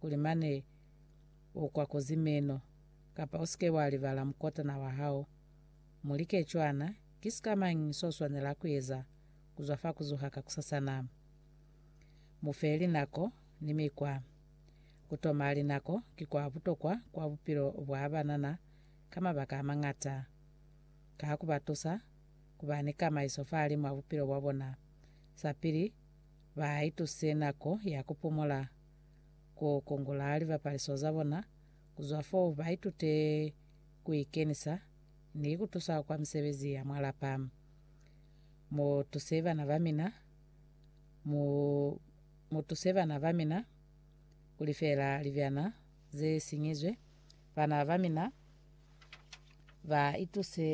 kuli mane u kwakuzi meno, kapa u si ke wa libala mukotana wa hao. Mu like cwana, Ki sika mañi so swanela ku eza ku zwa fa ku zuha kakusasa na? Mu fe linako ni mikwa. Ku toma linako ki kwa butokwa kwa bupilo bwa banana ka mabaka a mañata. Ka ku ba tusa ku ba ni kamaiso fahalimw'a bupilo bwa bona, sa pili ba ituse nako ya ku pumola, ku kungula libapaliso za bona, ku zwa fo ba itute ku ikenisa ni ku tusa kwa misebezi ya mwa lapa. Mu tuse bana ba mina, mu, mu tuse bana ba mina ku lifela libyana ze sinyizwe. Bana ba mina ba ituse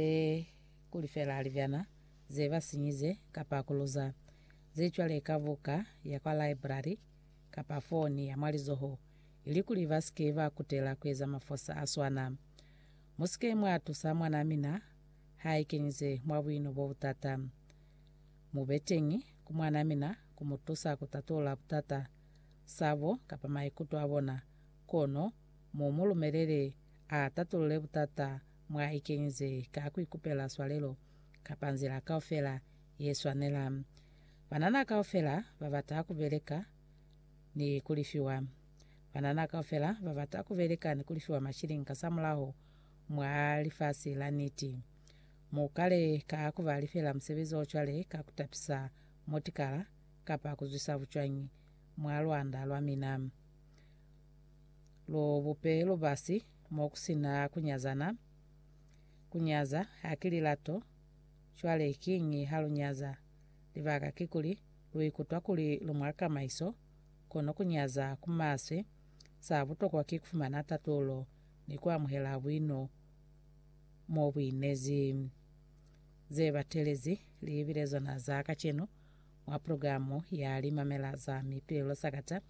ku lifela libyana ze ba sinyize kapa ku luza ze cwale ka buka ya kwa laibrari. kapa foni ya mwa lizoho ilikuli ba si ke ba kutela ku eza mafosa a swana. Mu si ke mwa tusa mwanaa mina ha i kenyize mwa buino bo butata. Mu be teñi ku mwanaa mina ku mu tusa ku tatulula butata, sabo, kapa maikuto a bona, kono mu mu lumelele a tatulule butata mwa i kenyize ka ku ikupela swalelo kapa nzila kaufela ye swanela. Banana kaufela ba bata ku beleka ni ku lifiwa. Banana kaufela ba bata ku beleka ni ku lifiwa mashilingi kasamulaho mwa lifasi la niti. Mu kale ka ku ba lifela musebezi o cwale ka ku tapisa motikala kapa ku zwisa bucwañi mwa lwanda lwa mina. Lu bupe lubasi mo ku si na ku nyazana. Ku nyaza haki lilato. Cwale kiñi ha lu nyaza? Libaka kikuli lu ikutwa kuli lu mwa kamaiso, kono ku nyaza ku maswe. Sa butokwa ki ku fumana tatulo ni ku amuhela buino mo bu inezi. Ze batelezi li bile zona za kacenu mwa progilamu ya Limamela za Mituelo Sakata,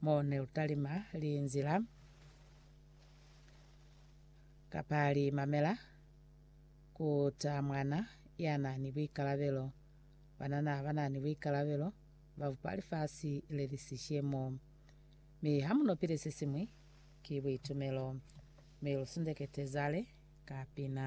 mo ne lu talima linzila kapa limamela. Ku ta mwana ya na ni buikalabelo. Banana ba na ni buikalabelo, ba bupa lifasi le li sishemo. Mi ha mu no pile se siñwi, ki buitumelo. Mi lu sundekete zale ka pina.